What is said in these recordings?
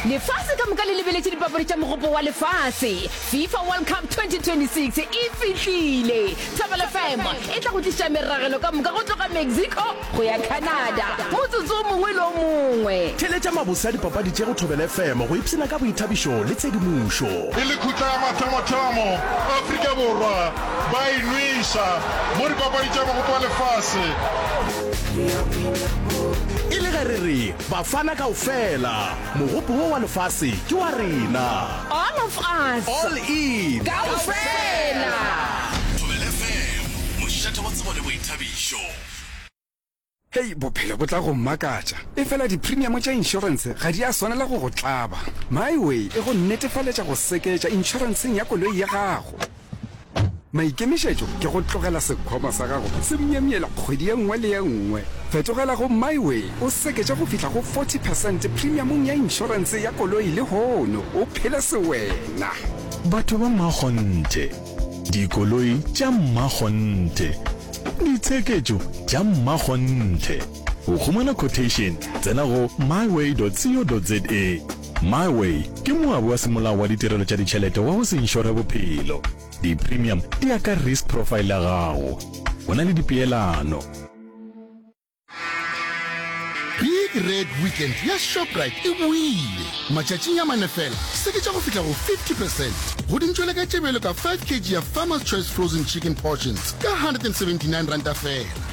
lefase ka moka le lebeletše dipapadi tša mogopo wa lefase fifa world cup 2026 e fihlile thobela fm e tla go tliša meragelo ka moka go tloga mexico go ya canada motsotso o mongwe le o mongwe theletša mabose a dipapadi tše go thobela fm go ipshina ka boithabišo le tshedimošo e le khutla ya mathomothamo afrika borwa ba e nweša mo dipapadi tša mogopo wa lefase e le ge re re bafana kao fela mogopo wo wa lefase ke wa rena all of us all in kao fela mošate wa tsebo le boithabišo Hei, bophelo bo tla go mmakatša. Efela dipremiamo tša inšorense ga di a swanela go go tlaba. MyWay e go netefaletša go seketša inšorenseng ya koloi ya gago. Maikemišetšo ke go tlogela sekhwama sa gago se myemyela kgwedi ye nngwe le ye nngwe. Fetogela go MyWay o seketše go fihla go 40 percent premiumong ya inšorense ya koloi lehono o phele sewena. Batho ba mmakgonthe, dikoloi tša mmakgonthe, ditsheketšo tša mmakgonthe. Go humana quotation tsena go myway.co.za. MyWay ke moabi wa semolao wa ditirelo tša ditšhelete wa go se inšore bophelo. Di-premium di ya ka risk profile ya gago. Go na le dipeelano. Big Red Weekend ya Shoprite e boile! Matšatšing a mane fela, seketša go fihla go 50 percent go dintšwele ka tše bjalo ka 5 kg ya Farmer's Choice Frozen Chicken Portions ka R179 fela.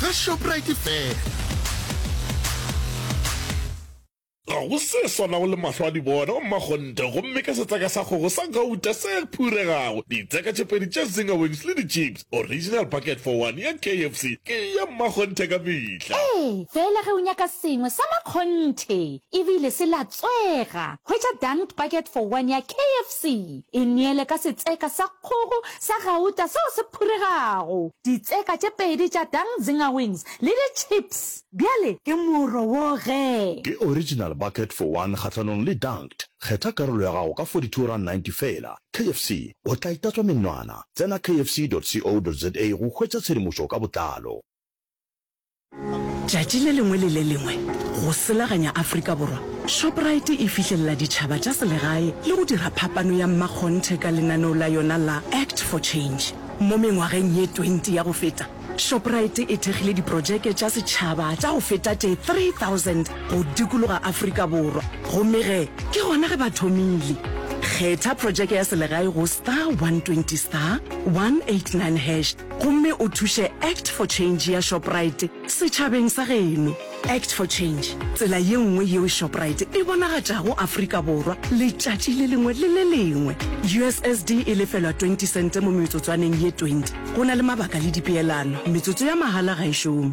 ga Shoprite fela. Ga go se swanago le mahlo a dibona wa mmakgonthe gomme ka setseka sa kgogo sa gauta se phuregago, ditseka tše pedi tša zinger wings le di-chips, original bucket for one ya KFC ke ya mmakgonthe ka mehla. Ee, fela ge o nyaka sengwe sa makgonthe e bile se latswega, hwetša dunked bucket for one ya KFC, e neele ka setseka sa kgogo sa gauta seo se phuregago, ditseka tše pedi tša Dang Zinger Wings le di chips. Bjale ke moro wo ge. Ke original bucket for one kgahlanong le dunked. Kgetha karolo ya gago ka 42 rand 90 feela. KFC, o tla itatswa menwana. Tsena kfc dot co dot za go hwetša tshedimošo ka botlalo. Tšatši le lengwe le le lengwe go selaganya Afrika Borwa, Shoprite e fihlelela ditšhaba tša selegae le go dira phapano ya mmakgonthe ka lenaneo la yona la Act for Change. Mo mengwageng ye 20 ya go feta, Shoprite e thekgile diprotšeke tša setšhaba tša go feta tše 3000 go dikologa Afrika Borwa. Gomme ge ke gona ge ba thomile. Kgetha protšeke ya selegae go star 120 star 189 hash gomme o thuše Act for Change ya Shoprite setšhabeng sa geno. Act for Change, tsela ye nngwe yeo Shoprite e bonagatšago Afrika Borwa letšatši le lengwe le le lengwe. USSD e lefelwa 20 sente mo metsotswaneng ye 20. Go na le mabaka le dipeelano. Metsotso ya mahala ga e šome.